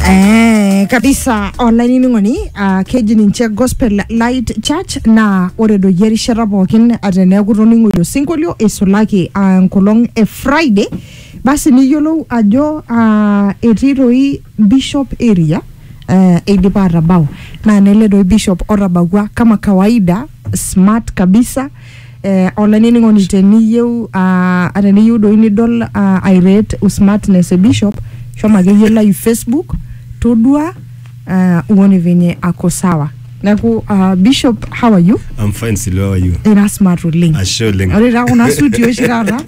Eh, kabisa olainining'oni uh, keji ninche gospel light church naa ore doi erishata pookin ah, teneeku itoning'oyie osinkolio eisulaki ah, enkolong e friday basi niyiolou ajo ah, etii doi bishop area eh, eidipa atabau naa nele doi bishop otabawua kama kawaida smart kabisa Eh, olainining'oni teniyieu ah, teniyieu doi nidol ah, I rate smartness e bishop shomo akeyie live facebook todua ah, uone venye ako sawa neeku ah, bishop how are you I'm fine Silvia, how are you? ira smart oleng Ashe oleng. ore taa kuna suti oshi taata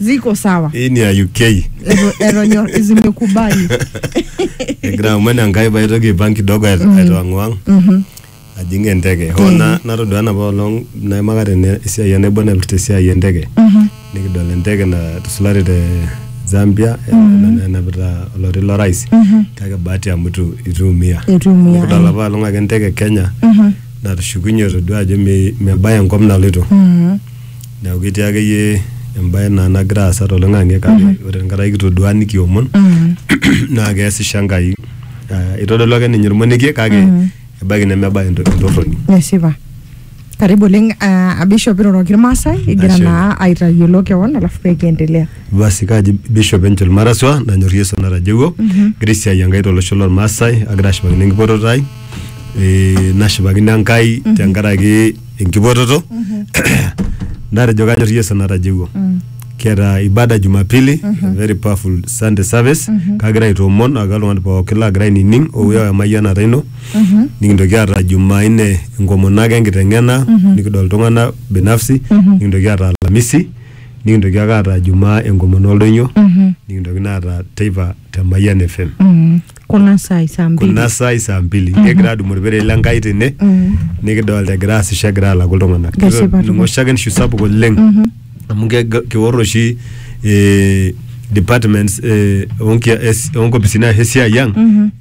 ziko sawa Hii ni ya UK. Eto- etonyor zimekubali Egira aman Enkai paitoki aipang kidogo aitawang'wang. ajing enteke hoo na- natodua enapa olong naimaka tene esiai enaibon naipirta esiai enteke nikidol enteke natusulari te zambia ena- enapita oloti lorais kake bahati amu itu ituumia Itu iumia, nikidol ai. apa olong ake enteke kenya natushukunye todua ajo me- mebaya enkop naloito Mhm. neeku ketii akeyie embae naa nagira aasa toloing'ang'e kake ore enkata kitodua nikiomon Mhm. naa keesisho enkai Ah, itodolu ake ninye ormonekie kake ebaiki nemebaya ento- entorroni Esipa. Karibu oleng uh, Bishop iroroki irmaasai egira Ashe. naa aitayiolo kewon alafu pee kiendelea. basi kaji bishop angel maraswa nanyor yesu natajeuo egira esiai enkai tolosho lormaasai agira ashipakino enkipototo ai Eh, nashipakino enkai tenkaraki enkipototo natejo kanyor yesu natajeuo kiata ibada jumapili a very powerful sunday service kagira aitoomon ake oltung'ani pookin lagira ainining ouya emayianata ino nikintoki aata jumaine enkomono ake enkiteng'ena nikidol iltung'anak binafsi nikintoki aata alamisi nikintoki ake aata jumaa enkomono oldoinyo nikintoki naa aata teipa te mayian fm kuna saai saa mbili kuna saai saa mbili kegira adumu orpere le Nkai tene nikidolta egira aasisho egira alaku iltung'anak Kesipa Ninye oshiake nishu sapuk oleng amu keg- keor oshi eh, departments eh, onkia- es- onkopisini ashu esiai ang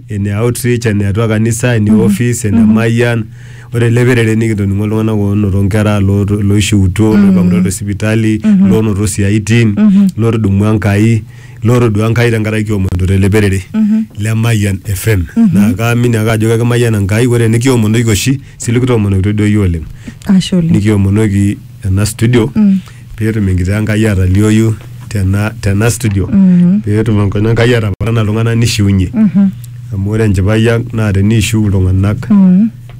ene outreach ene atua kanisa ene office ene mayian ore ele perere nikitoning'o iltung'anak oonoto nkera looto- looishiutuo loipang'utua te sipitali loonoto siaitin lootudumua Enkai Lotodua Nkai tenkaraki kiomonito tele perere le Mayian FM. Naa kaamini ake ajo kekimayiana Nkai ore nikiomonoki oshi sile kitoomonokitoi duo iyie oleng. Ashe oleng. Nikiomonoki ena studio peetum enkitaa Enkai atalioyu tena tena studio peetum enkoina Enkai atapaana iltung'anak nishiunye. Amu ore enchipai ang' naa teniishiu iltung'anak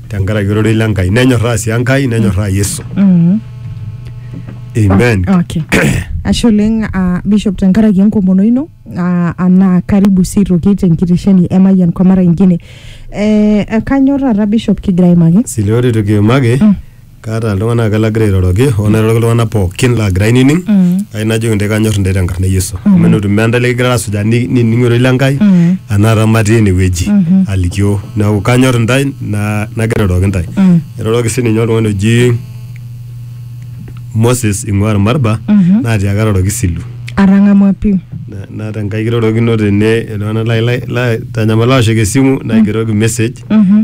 tenkaraki ororei le Nkai nenyorraa sii Enkai nenyorraa Yesu. Mm. Amen. Okay. Ashe oleng uh, Bishop tenkaraki enkomono ino uh, anaa karibu sii toki tenkitesheni e Mayian kwa mara ingine. Eh, kanyor taata Bishop kigira aimaki. Sile ore toki imaki Mm. kaata iltung'anak ake lagira airoroki hoo nairoroki iltung'anak pookin laagira ainining ai najoki intae kanyor intae tenkarna e yesu amu enotu meeta intae likigirara asujaa ni- nining ororei le nkai anaata matii enewueji alikioo neeku kanyor intae na- nagira airoroki intae airoroki sininye oltung'ani oji moses ing'ua irmarba naatiaka airoroki silu atang'amua pii Na- naata enkai kirorokino tene iltung'anak lai- lai- laitanyamala aoshoki esimu naigeroki message Mhm.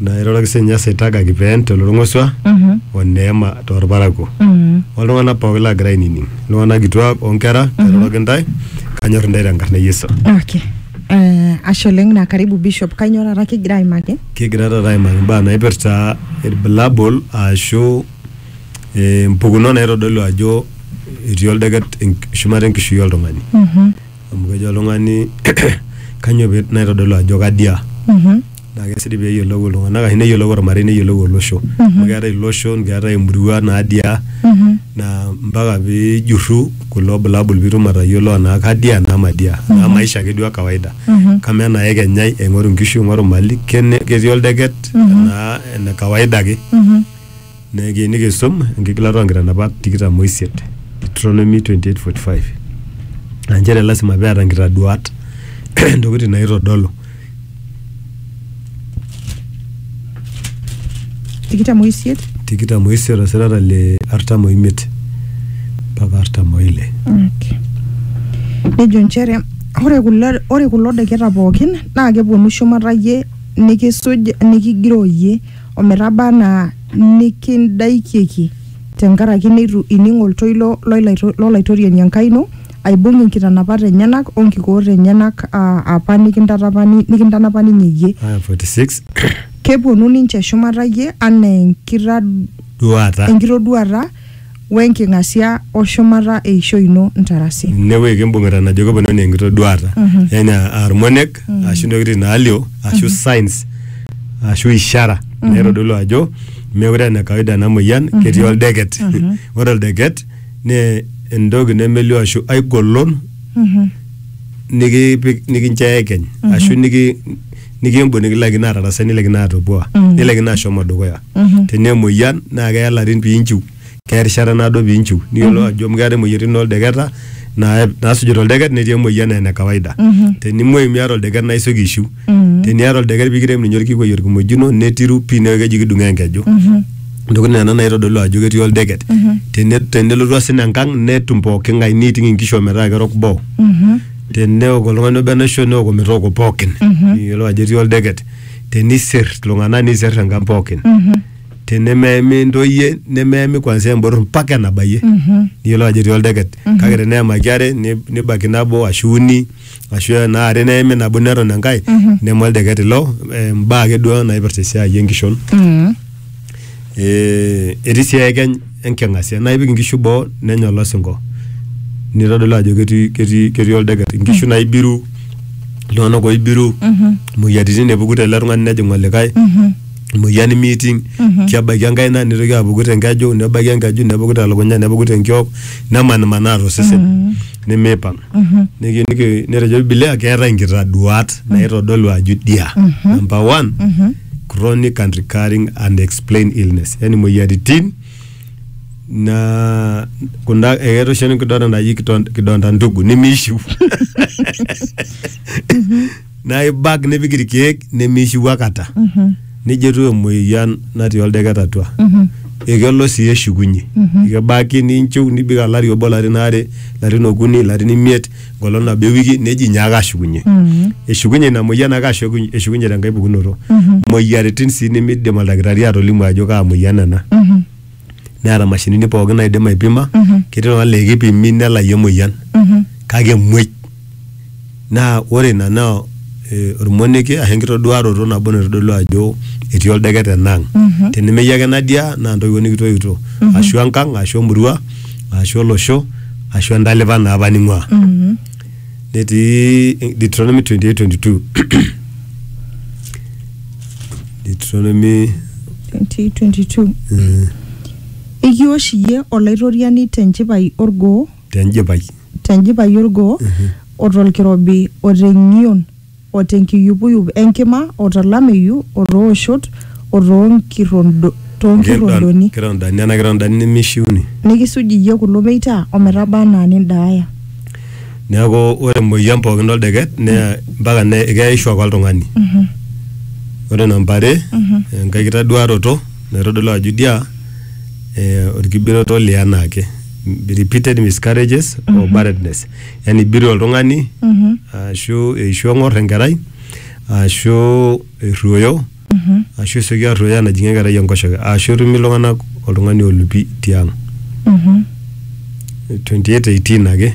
Naa airoroki sininye Asaitaga Kipeen tolorng'osua Mhm. o Neema torparakuo. Mhm. Oltung'anak pooki laagira ainining, iltung'anak kituak o nkera kairoroki ntae kanyor intae tenkarna e Yesu. Okay. Eh, ashe oleng na karibu Bishop. Kainyoo taata kigira aimaki? Kigira taata aimaki imbaa naipirta ilbulabul aashu eh, mpukunot naitodolu ajo etii oldeket enk- shumata enkishui oltung'ani. Mhm. amu kejo oltung'ani kanyoo pee naitodolu ajo kadia naa kesidai pee eyiolou iltung'anak ashu neyiolou ormarei neyiolou olosho amu keetae iloshon keetae imurua nadia naa mpaka piijurru kulo bulabul piitum atayiolo enaa kadia enaa madia enaa maisha ake duo e kawaida kamaa enaa ekenyai aing'oru inkishu aing'oru imali kene ketii oldeket enaa ene kawaida ake. Naa kiyieu nikisum enkigilata oo nkitanapat tikitam o isiet, Deuteronomy 28:45, aa nchere lasima pee eeta nkitaduaat intokitin naaitodolu. tikitam o isiet tikitam o isiet osirata le artam o imiet mpaka artam o ile. okay. nejo nchere ore kulo ore kulo deketa pookin naa keponu shumata iyie nikisuj nikigiroo iyie o metaba anaa nikindaikieki te nkaraki neitu ining oltoilo lo Laitoriani Enkai ino, aibung inkitanapat enyena o nkikoot enyena apa nikintanapa ninye iyie. Kepuonu ninche shumata iyie anaa enkitoduaata. we nking'asia o shumata eishoi ino ntarasi. Ine wueji kimbung'ita najo keponaa enaa enkitoduaata, yaani aa irmonek ashu intokitin naalio ashu signs ashu ishara naitodolu ajo meekure aa ene kawaida ena moyian ketii oldeket. Ore oldeket naa entoki nemelio ashu ai golon nikipik nikincho eekeny ashu niki nikimbung nikilaikino atarasai nilaikino atopua nilaikino ashomo dukuya tenaa emoyian naa keya larin piinchiu keya erishata naado piinchiu niyiolou ajo amu keetae imoyiaritin oldeketa naa- naasujita oldeket netii emoyian naa ene kawaida tenimuoyu miata oldeket naa isioki aishiu teniata oldeket pikirem ninye orkikwei orkimojino netiru pii neeku keji kidung'oo enkeju intokitin nena naitodolu ajo ketii oldeket Tene- tenelotu osina enkang netum pooking'ae neiting inkishu ometaa kerok boo teneok oltung'ani obo enaisho neok ometooko pookin niyiolou ajo etii oldeket tenisir iltung'anak nisir enkang pookin tenemeemi intoyie nemeemi kwanzia embotor mpaka enabayie niyiolou ajo etii oldeket kake teneemaki are ni- nibaki nabo ashu uni ashu enaa are neemi nabo neton enkae neme oldeket ilo eh, imbaa ake duo naipirta esiai enkishon. Ee etii sii eekeny enking'asia naa ipik inkishu boo nenya olosinko nitodolu ajo ketii ketii ketii oldeket, inkishu naibiru, iltung'anak oibiru, imoyiaritin epuku tele tung'ani nejing' olikai, emoyian miiting', kebaiki enkaina nitoki apuku te nkeju, nebaiki enkeju nepuku te lukunya, nepuku te nkiok, nemanimanaa to sesen nemipang'. Niki niki netejo bibilia keetai nkitaduat naitodolu ajo idia. Number one. chronic and recurring unexplained illness yani moyiaritin na kunda ekeeta oshi enkidonda naji kidon- kidonda ndugu nimishiu na ibak nipik irkiek nimishiu akata nejo etiu emoyian natii oldeket atua ekelo sii eshukunye ekebaki ninchiu nibik alari obo larin aare larin okuni larin imiet engolong nabo ewiki neji nyaaka ashukunye eshukunye ina moyian ake ashukunye eshukunye tenkae pukunoto moyiaritin sii nimidim oldakitari atolimu ajo kaa moyian ena neeta mashinini pookin naidim aipima ketii oltung'ani laa ekipimi nelayu emoyian kake emuoi naa ore ina naa eh, ormonekie ashu enkitoduaroto nabo naitodolu ajo etii oldeket enaang teneme iyie ake nadia naa intoiwuo nikitoiutuo ashu enkang ashu emurua ashu olosho ashu entalipa naa apa ning'ua mm. netii Deuteronomy 28:22 Deuteronomy 2022 mm, ekiosh iyie olaitoriani tenchipai orgoo tenjipai tenchipai orgoo otolkirobi oteng'ion o te nkiyupuyup e nkima o to lameyu o too oshot o too nkirondoni. Nkirondani, nena kirondani nemeishiuni. Nikisuj iyie kulo meita o metaba anaa nindaaya. Neaku, ore emoyian pooki o ldeket naa mpaka nee keyaisho ake oltung'ani. Ore namba are, enkae kitaduaroto naitodolu ajo idia olkigeroto li anaake, repeated miscarriages o barrenness. yani ibiru oltung'ani ashu eishu eng'or enkerai ashu erruoyo ashu esioki arruoyo enajing'ie enkerai enkoshoke ashu etumi iltung'anak oltung'ani olupi tiang' 2818 ake.